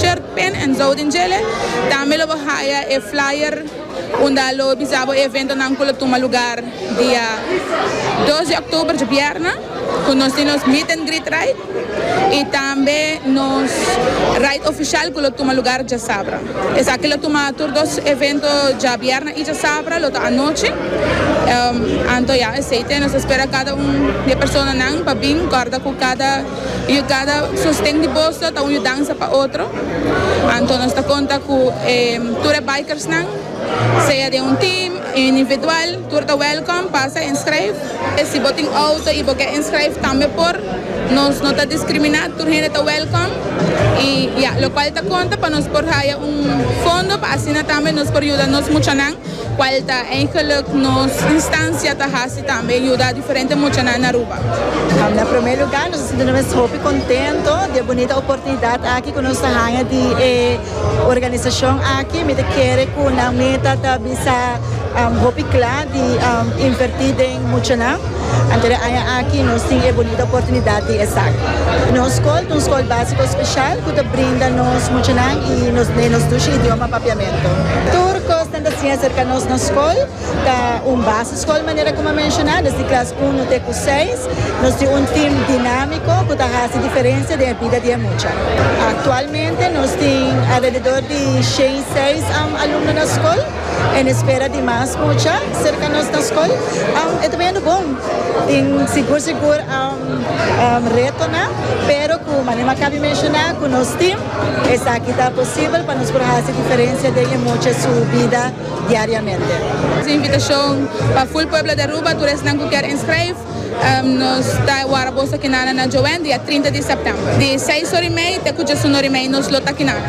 Richard Pen en Zoutendjele. Tambe lo bo haya e flyer unda lo bisa bo e eventonan cu lo tuma lugar dia dos di octuber, djibierna, cu nos tin nos Meet and Greet Ride y tambe nos Ride Oficial cu lo tuma lugar djasabra. Esaki lo tuma tur dos evento djabierna y djasabra, lo ta anochi. Anto ya, esey te nos ta spera cada un di e personanan pa bin, corda cu cada. Y cada sosten di boso ta un yudansa pa otro. Anto nos ta conta cu e tur e bikersnan, sea den un team y individual, tur ta welcome pa sa inschrijf. E si bo tin auto y bo ke inschrijf tambe por. Nos no ta discrimina, tur hende ta welcome. Y ya, locual ta conta pa nos por haya un fondo pa asina tambe nos por yuda nos muchanan. Cual ta ein geluk nos instancia ta haci tambe yuda diferente muchanan na Aruba? Na primer lugar nos ta sinti nos hopi contento di e bunita oportunidad aki cu nos ta haya di e organizacion aki. Mi ta kere cu nan meta ta bisa hopi cla di inverti den muchanan. Anto den aña aki nos tin e bonito oportunidat di esaki. Nos skol ta un skol básiko speshal ku ta brinda nos muchanan i nos nenan nos dushi idioma papiamentu. Tur kosnan ta siña aserka nos na skol. Ta un base skol manera ku mi a menshoná, desde klas uno te ku seis. Nos tin un tim dinámiko ku ta hasi diferensia den e bida di e mucha. Aktualmente nos tin alrededor di shen i seis alumno na skol. En espera di mas mucha serka nos na skol. E ta biendo bon. Tin sigur sigur retonan, pero ku manera m'akabi menshoná ku nos tim, esaki ta posibel pa nos por hasi diferensia den e mucha su bida diariamente. Nos invitashon pa ful pueblo di Aruba, tur esnan ku kier inskrev, nos ta wara boso akinana na Joen dia trinta di sèptèmber, di seis ora i mei te ku diesun ora i mei nos lo ta akinana.